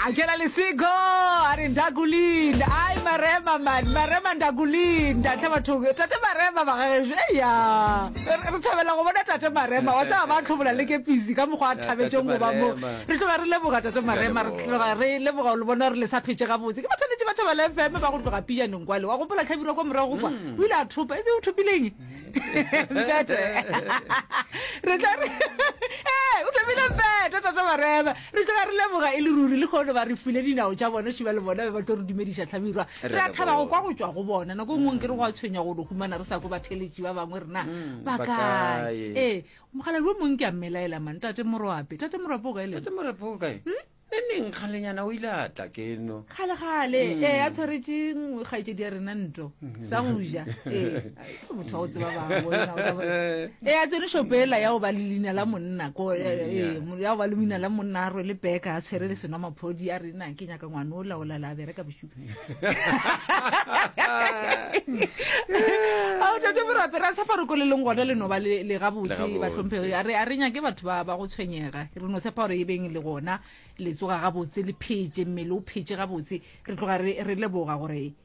Akela Lesego a re ndakulinda ai marema mani marema ndakulinda tle batho tate marema ba gageso eya re thabela go bona tate marema wa tsaba ba tlhobola le kepisi ka mokgwa a thabetseng go ba mo re tloga re leboga tate marema re tloga re leboga le bona gore le sa phetse gabotse ke ba tshwanetse ba thabela fm ba go tloga pijaneng kwale wa gopola tlhabirwa kwa morago kwa mm. o ile a thopa e se o thopileng mpete re tla re ee o thopile mpete tate marema Re tloga re leboga e le ruri lehono ba re file dinao tša bona šuba le bona be ba tlo re dumediša Hlabirwa. Re a thaba go kwa go tšwa go bona. Nako e nngwe nkere go a tshwenya go no humana re sa kwe batheeletši ba bangwe re na ba ba kae. kae? Ee, mokgalabje o mongwe ke a mmelaela man, Tate Moroape. Tate Moroape o kae le? Tate Morape o kae? Ne neng kgalenyana o ile a tla ke no. Kgale-kgale, ee, a tshwaretše mm, kgaetšedi ya rena Nto, sa go ja. Ee, motho wa go tseba bangwe e a tsene shopela ya go ba le leina la monna ko eh, eh, eh, ya go ba le leina la monna a rwele beka a tshwere le sena maphodi a re na ke nyaka ngwane o laola la bereka bosupi ao tate borape ra tshepa re koleleng gona le noba le le gabotse Legabotse. batlhomphegi a re a re nyake batho ba ba go tshwenyega re no tshepa gore e beng le gona le tsoga gabotse le phetse mmele o phetse gabotse re tloga re re leboga gore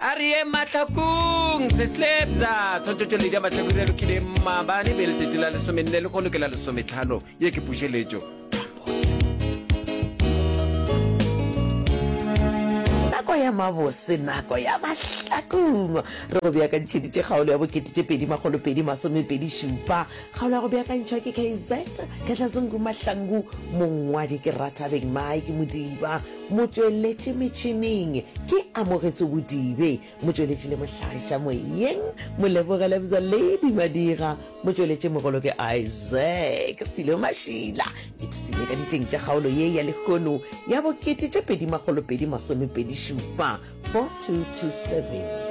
A re ye mahlakong seslepza tshwantšhetšo ledi ya mahlakong ya lokile mmabane be letšatši la lesomenne le kgono ke la lesometlhano ye ke pušeletšo nako ya mabose nako ya mahlakong re go beakantšheditše kgaolo ya bokete tše pedi makgolo pedi masomepedi šupa kgaolo ya go beakantšhwa ke kz ketlazungu mahlangu mongwadi ke rathabeng mike modiba Motšweletši metšhining ke Amogetso Bodibe, motšweletši le mohlagiša moyeng Moleboge Lebza Lady Madira, motšweletši mogolo ke Isaac Silo Mashila. Ipsine ka ditšeng tša kgaolo ye ya lehono ya bo kete tše pedi makgolo pedi masome pedi šupa, 4227.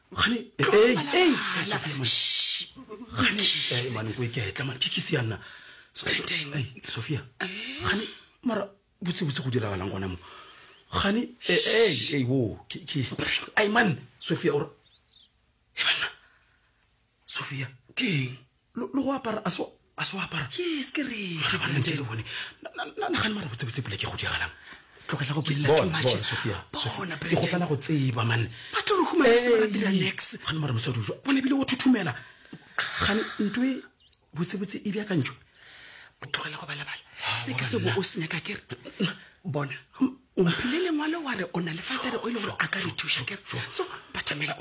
sophia gane mara botsebotse go diragalang gona mo gane o ai man sophia ore e banna sophia ke eng lo go apara a so a so apara yes ke re mara ba ntle le bone na na na gane mara botse botse pula ke go diagala tlogela go bella too much Sophia bona pre go fela go tseba man ba tlo re huma se ba dira next gane mara mosadi o jwa bona bile o thuthumela gane ntwe botse botse e bya ka ntjo tlogela go bala bala se ke se bo o senya ka kere bona o mphile lengwalo wa re o na le fatere o e le gore a ka re thuša kere so batamela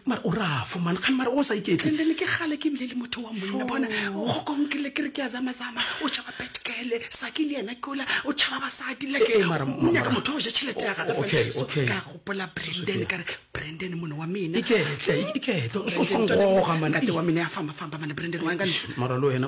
mara o rafo man kgane mara o sa iketle then ke gale ke bile le motho wa monna bona go konkele kere ke ya zamazama o tšhaba petkele sake le yena kola o tšhaba basadi lekenyaka motho o ja tšhelete ya gagaka gopola branden kare branden mone wa menaiketle o swangoga man wa mene ya famafamba mane branden wa mara le wena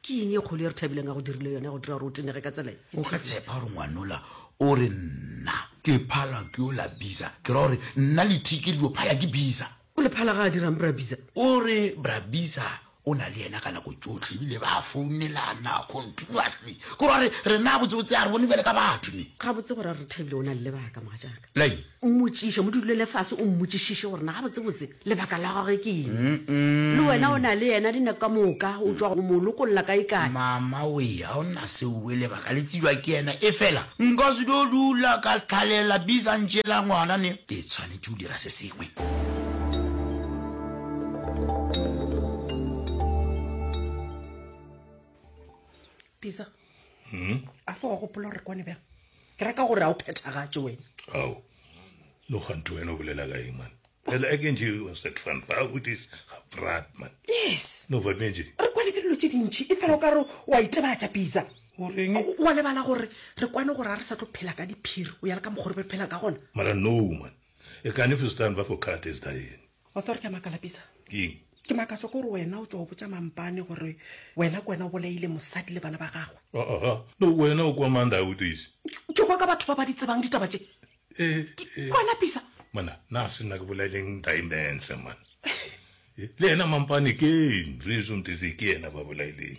ke eng e kgolo e re thabileng ka go dirile yone go dira gore o tenege ka tsela e o ka tshepa gore ngwanola o re nna ke phala ke o la bisa ke ra gore nna le thiki le yo phala ke bisa o le phala ga a dirang brabisa o re brabisa o na le yena ka nako tsotlhe ebile ba founelana continuously ke gore rena botsebotse a re bone bjale ka batho ne ga botse gore a re thabile o na le lebaka moga jaaka lai Mmotšiše, mo dulele fase o mmotšišiše gore na gabotsebotse lebaka la gagwe ke eng. Le wena o na le yena, dinako ka moka o tšwa go mo lokolla kaekae. Mama we, ga o na seo we, lebaka le tsebja ke yena. Efela nka se tlo dula ka hlalela bizantše la ngwana ne. Ke tshwanetše go dira se sengwe. Bisa. hmm? a fa wa gopola gore kwane bjang ke raka gore a o phethagatse wena ao no gante wena o bolela ka eng man Well, I can do you was that fun. But with this brat, man. Yes. No, but Benji. Re kwane ke dilo tse dintšhi e fela o ka re wa itebatša pizza wa lebala gore re kwane gore a re sa tlo phela ka diphiri o ya le ka mokgore re phela ka gona mara no man E can if you stand ba for cut is dying. Wa tswa gore ke a makala pisa. Ke eng? Ke makatso ko re wena o tswa o botsa mampane gore wena ke wena o bolaile mosadi le bana ba gagwe. Ah ah ah no wena o kwa manda o tise. Ke kwa ka batho ba ba di tsebang ditaba tse. Eh eh. Wena pisa. Mana na se nna ke bolaileng diamonds man. Le yena mampane ke reason tse ke yena ba bolaileng.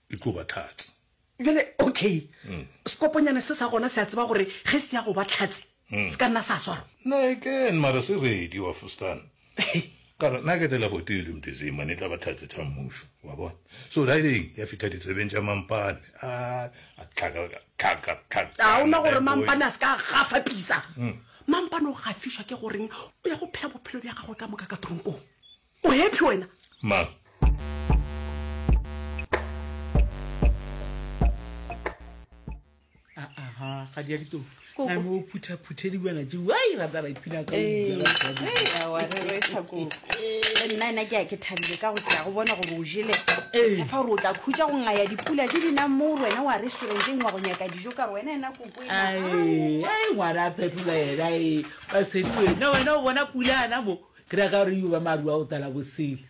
e tlo ba tlhatsi. Bjale, okay, sekoponyane se sa gona se a tseba gore ge se ya go ba tlhatsi, se ka nna sa swarwa? Nike, mara se ready, wa fustan. Ka re, Nike tela gotee le Mdizima, ne e tla ba tlhatsi tha mmušo, wa bona. So riding, ya fitha ditsebeng tša Mampane, a, a tlhaka, tlhaka, tlhaka, tlhaka. A o na gore Mampane a se ka a gafa pisa? Mampane o gafišwa ke goreng o ya go phela bophelo bja gagwe ka moka ka tronkong. O happy wena? Mang? Aha, ga di ya ditoro. Koko. I'm o phutha phuthe di buana tse. Why rather I phina ka. nna ena ke ya ke thabile ka go tla go bona gore o jele Ee. tshepa gore o tla khutsa go ngaya dipula tse di nang moo wena wa restauranteng wa go nyaka dijo ka gore wena ena koko ena. Ai, ai ngwana a phetola ena e. Ba sedi wena, wena o bona pula ana mo. Ke ra ka re yo ba maru a go tala bosele.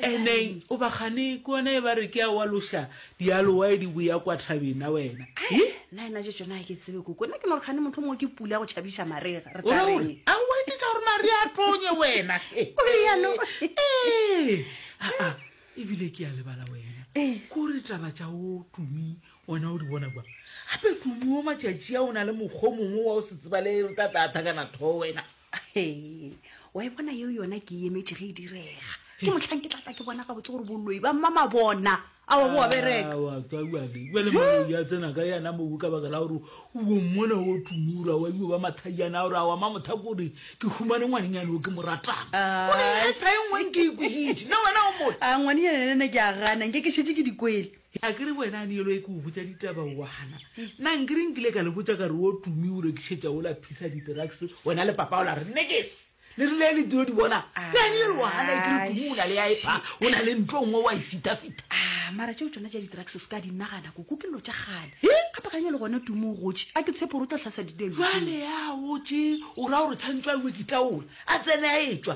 Eneng o ba gane ke wena e ba re ke a wa losha dialowae di boya kwa thabeng na wena. Hi. Na ena je tsona ke tsebe koko na ke no gane motho mo ke pula go chabisha marega re tla re. A wa ke tsa gore mari a tonye wena. O re ya no. Eh. A a e bile ke a le bala wena. Ko re taba tsa o tumi wena o di bona kwa. Hape tumi o matšatši a o na le mokgomongwe wa o se tsebale re tla tla thakana tho wena. wa e bona yeo yona ke emetše ge e direga ke motlhang ke tlatla ke bona gabotse gore boloi ba mmama bona a wa boa berekatswaa tsena ka yana mobu ka baka la gore o bommona o tumura wa io ba mathaiana gore a wa ma motha kore ke humane ngwanenyane o ke moratanaengweng ke ikositše le wena o mo a ngwanenyane nene ke a gana nke ke šetse ke dikwele He a ke re wena Anielo e ke o botša ditaba o a gana. Nna nkere nkile ka le botša ka re wo Tumi o rekišetša wo la Phisa di-drugs wena le papao la re nekes le rile le dio di bona. Le Anielo o a gana e ke re Tumi o na le ya epha o na le ntlo nngwe wa e fitafita. Ah, mara tšeo tšona tša di-drugs o se ka di nagana koko ke llo tša kgale. He? Gape ga nyalo gona Tumi o gotše a ke tshepo gore o tla hlasa ditelo. Jwale ya gotše o ra gore tshwantšwe a iwe ke taola a tsene a etšwa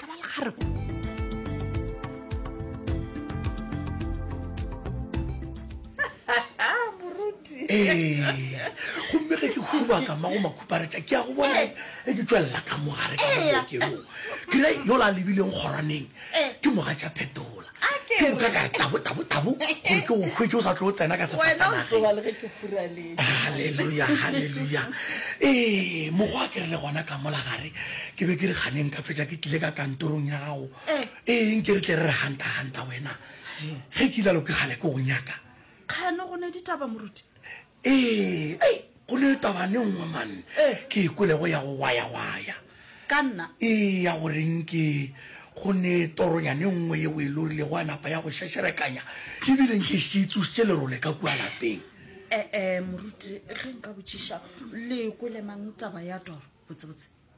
ka ba legare gomme ge ke hubaka mago makhuparetša ke ya go bona e ke tswelela ka mogare ka mokeong kere yola a lebileng kgorwaneng ke moga tša phetola A ke ke utlwa re. ka re tabu tabu tabu gore ke o hwe ke o sa tlo o tsena ka Wena o sefatanageng tsoga le ge ke furaletše. halleluja halleluja ee mokgwa ke re le gona ka mola gare ke be ke re kganeng ka fetša ke tlile ka kantorong ya gago Eh. ee nke re tle re re hanta hanta wena ge ke ilalo ke kgale ke go nyaka Kgano go ne ditaba moruti. Ee, ei, go ne taba ne nngwe man ke e kwelego ya go wayawaya. Ka nna? Ee, ya go reng ke go ne toronya ne nngwe yeo e lorilego a napa ya go šešerekanya e bile nke e šetše e tsošitše lerole ka kua lapeng. Ee, moruti, ge nka botšiša, le e kwele mang taba ya toro, botsebotse?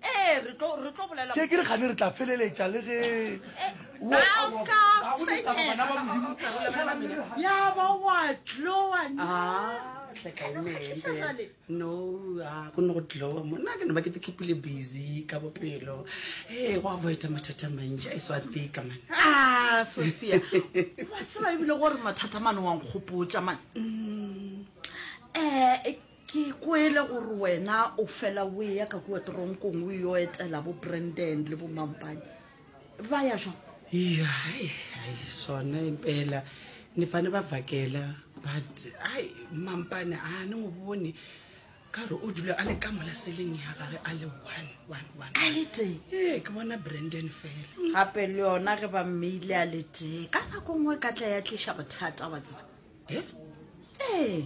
Ee, re tlo re tlo bolela. Ke ke re gane re tla feleletša le ge ya ba wa tloa no go ne go tloa mona ke ne ba ke te kepile busy ka bopelo e go avoida mathata mantši a e swa tika mane ah, sophia wa tseba ebile gore mathata mane wa nkgopotša mane um ke kwele gore wena o fela o eya ka kua toronkong o yo etela bo brandon le bo mampane ba ya jwa ya sone impela ni fane ba vakela but ai mampane a ni n'wi voni karhi u dule a le ka mola seleng ya gage a le one one one a le tee ee ke bona brandon fela gape le yona ge ba mmeile a le tee ka nako nngwe ka tla ya tliša bothata wa tseba e ee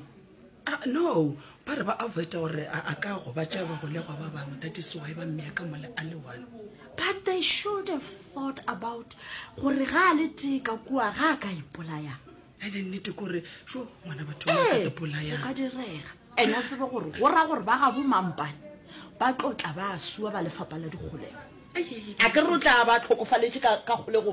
ah, no ba re ba avoida gore a ka go ba tšea bagolegwa ba bangwe that is why ba mmea ka mole a le one but they should have thought about gore ga a le tee ka kua ga a ka ipolaya ene e nnete kore so ngwana batho ipolaya ee, ka direga ene a tsebe gore go raya gore ba ga bo mampane ba tlotla ba sua ba lefapa la dikgolego a ke re o tla ba tlhokofaletse ka kgolego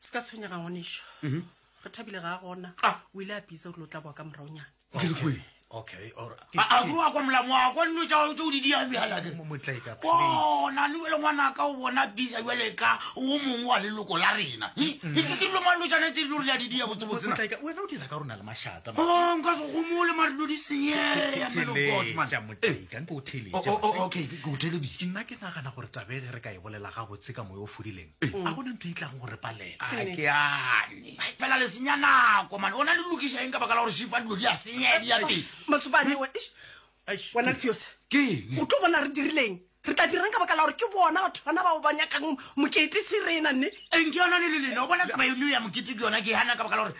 se ka tshwenyega ngwaneso mhm. re thabile ga a gona ah. o ile a pitsa gore lo tla boa ka moraonyana aroa kwa molamo wa kwa dilo tsa tse o di diang bjalake bona le wele ngwana ka o bona bisa jale ka o mongwe wa leloko la rena ke dilo mang lo tshwanetse dilo re ya di dia botsebotsenka se gomole mare dilo di senyeyaotheleditšenna ke nagana gore tabege re ka e bolela ga botse ka moyo o fodileng a gona ntho e tlago go re palela a ke ane fela le senya nako mane ona le lokiša eng ka baka la gore shifa dilo di a senya di ya pele matsubane we wena lefiose keng o tlo bona re dirileng re tla dirang ka baka la gore ke bona batho bana bao ba nyakang mokete se rena nne eng ke yona le le lena o bona taba eno ya mokete ke yona ke hana ka baka la gore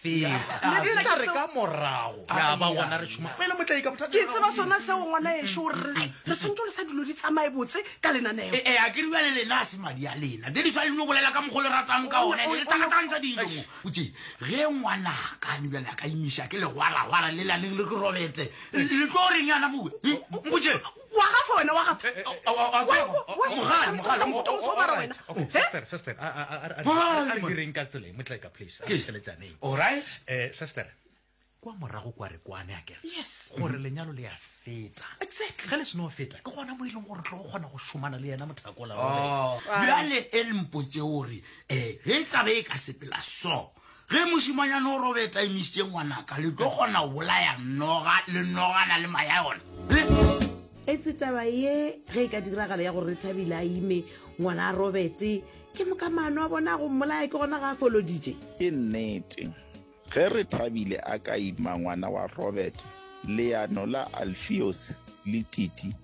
feta le tla re ka morago ya ba gona re tšhuma pele motlae ka bothata ke tseba sona seo ngwana ešo gore re re swantse le sa dilo di tsamaye botse ka lenaneo e eh, a ke riwa le lena a se madi a lena le diswa le no bolela ka mogolo ratang ka one le takatantsa dilo mo o tse ge ngwana ka ni bjale a ka imisha ke le gwara gwara le la le le ke robetse le tlo reng yana mo o tse wa gafa wena wa gafa kwa morago kwa re kwane a kere yes gore lenyalo le ya feta exactly ge le seno feta ke gona mo e leng gore tlo go kgona go šomana le yena mothakola oh. bjale e lempotse gore um eh, ge tlabe e ka sepela so Ge mošemanyana o robe taimistše ngwanaka, le tlo kgona go bolaya noga le nogana le maya yona. Le. Etse taba ye ge e ka diragala ya gore Rethabile a ime ngwana a robete, ke moka maano a bona a go mmolaya ke gona ga a foloditše. Ke nnete, ge Rethabile a ka ima ngwana wa Robete, leano la Alfios le Titi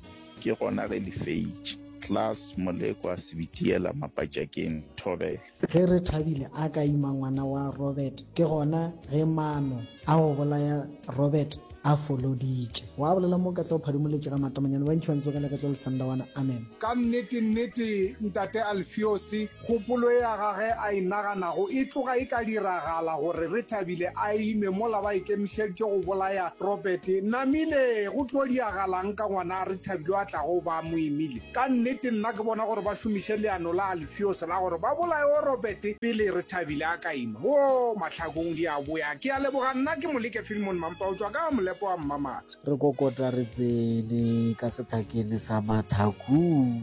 ke gona ge le feitše. Klaas Molekwa Sebitiela Mapatšakeng Thobela. Ge Rethabile a ka ima ngwana wa Robert ke gona ge maano a go bolaya Robert a foloditše. Wa bolela mo ka tla o phadimoletše ga matamanyane, bantši ba ntse ba ka leka tšo lesanda wana. Amen. Ka nnete, nnete, Ntate Alfiose, kgopolo ya gage a e naganago e tloga e ka diragala, gore Rethabile a ime mola ba ikemišeditše go bolaya Robert. Namile, go tlo diagalang ka ngwana Rethabile yo a tlago go ba a mo imile? Ka nnete, nna ke bona gore ba šomiše leano la Fuse la gore ba bolaye o Robert pele Rethabile a ka ima. Woo, mahlakong di a boya. Ke a leboga, nna ke Moleke Filmon Mampa o tšwa ka Molepo wa Mmamatshe. Re kokota re tsene ka sethakene sa mathakung.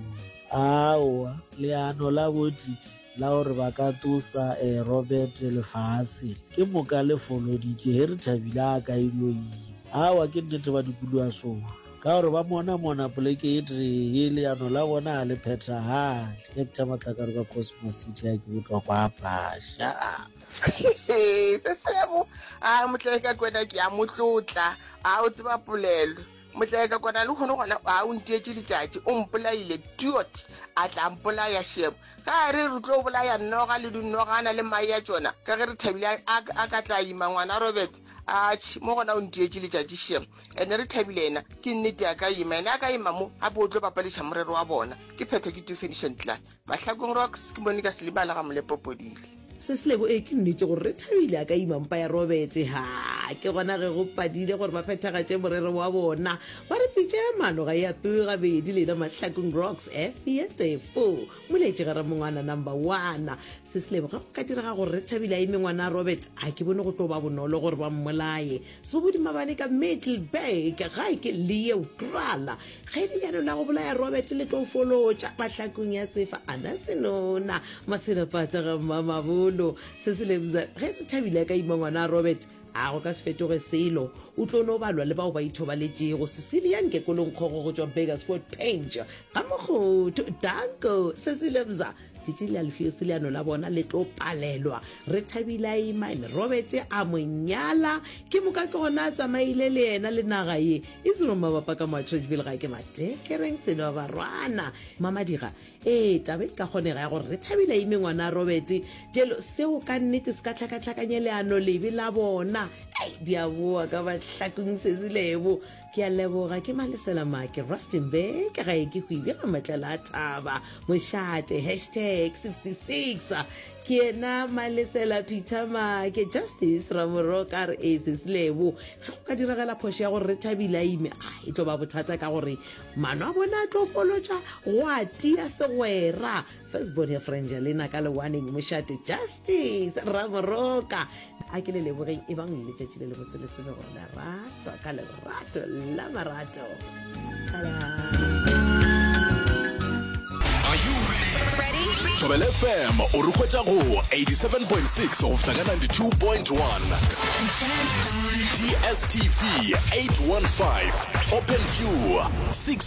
Aowa, leano la bo Didi la gore ba ka tsosa Robert lefaseng ke moka le foloditše ge Rethabile a ka e no ima. Aowa, ke nnete ba dikoloasowa. Ka gore ba monamona poleke e tee ye leano la bona ga le phethagale. Hector Matlakare kwa Cosmos City a ke botlwa kwa Basha. Sesebo, A motlae ka kwena ke a motlotla, a o tseba polelo. Motlae ka kwana lehono gona a o ntietše letšatši, o mpolaile, diot, a tla mpolaya Shebo. Ge a re re tlo bolaya noga le dinogana le mae a tšona, ka ge re thabile a, a, a ka tla ima ngwana Robert, atšhe, mo gona o ntietše letšatši Shebo. ene re thabile yena ke nnete a ka ima ene a ka ima mo gape o tlo bapadiša morero wa bona ke phetho ke tufedišantla mahlakong rocks ke monika selimala ga molepopodile se se lego ee ke nnete gore re thabile a ka ima mpa ya robete ha ke gona ge go padile gore ba phethagatše morero wa bona ba re pitša ya mano ga e apewe gabedi lena mahlakong rocks efietefo moletše ga ramongwana number one se se lebo ga go ka direga gore re thabile a ime ngwana robert a ke bone go tlo ba bonolo gore ba mmolaye Sebobodi mabane ka Middelburg, gae ke Leo Krala, ge lenyalo la go bolaya Robert le tlo folotša mahlakong ya tsefa ana senona maselapata ga mmamabolo se se lebza ge re thabile a ka ima ngwana Robert a go ka se fetoge selo o tlo no balwa le bao ba ithobaletšego Cecilia nkekolong kgogo go tšwa Burgersfort Penge ga mokgotho danko se se lebza Tšatši le Alfiose leano la bona le tlo palelwa. Re thabile a ima and Robert a mo nyala. Ke moka ke gona a tsamaile le yena le naga ye. Isiro mabapa ka mo Atteridgeville ga ke mateke reng sele ba barwana. Mamadiga, Ee, taba e ka kgonega ya gore re thabile a ime ngwana a Robert. Bjalo seo ka nnete se ka hlakahlakanye leano lebe la bona. Ei, di a boa ka mahlakong sesi lebo. Ke a leboga ke Malesela Make Rustenburg gae ke go ibjela matlela a thaba mošate hashtag 66 ke ena Malesela Peter Make Justice Ramorok a re ese selebo ge go ka diragela phošo ya gore re thabile a ime a e tlo ba bothata ka gore mano a bone a tlo folotša go a tia segwera First born ya Frangelina ka lewaneng mošate Justice Raboroka a ke le lebogeng e bang le letšatši le le botse le tsebe gore la ratwa ka lerato la marato Thobel FM o re hwetša go 87.6 go fihla ka 92.1 DSTV 815 Open View 6